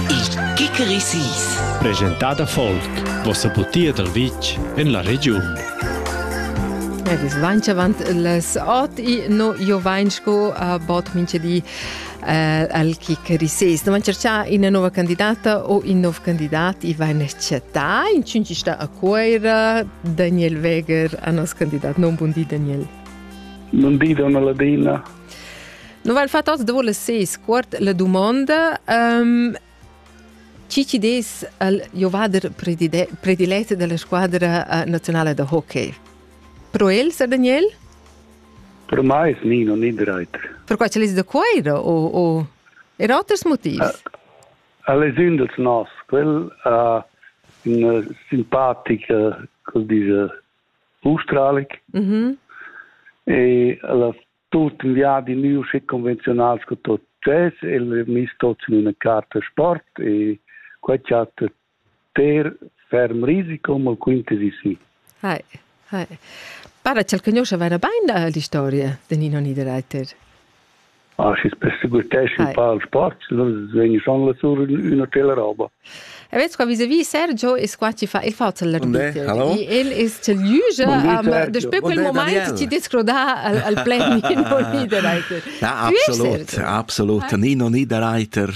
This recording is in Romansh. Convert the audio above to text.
Il Kikeri Sis. Presentada Folk, vossa butia dal vitg en la regiun. Ed es vainch avant les ot i no io vain sco a bot minchedi eh, al Kikerises. No vain cerchà ina nova candidata o in nov candidat i vain chattà in cinci sta a Coira Daniel Weger a nos candidat. Non bun di Daniel. Non di da una ladina. Noval fatos dovo le ses quart la dumonda um, chi ci des al Jovader predilet della squadra uh, nazionale da hockey? Pro el, Sir Daniel? Pro mai Nino Niederreiter. Per qua ce les da coira o, o er oters motivs? Uh, alle sind als nos, quel uh, un simpatica, quel diese australic mm -hmm. e las tut in viadi nu schi convenzionals co tot chess e mis tots in una carta sport e quai chat ter ferm risico mal quintesi si. Hai, hai. Para ch'el conosce vera bain la historia de Nino Niederreiter. Ah, schi's perseguitescha ün pa il sport, vegn schon lassur ün hotel e roba. E vez qua vis-à-vis Sergio es qua chi fa il fatel l'arbiter. El es tel Jüge, daspö quel moment ti descroda al pleni non Niederreiter. Ja, absolut, absolut. Nino Niederreiter,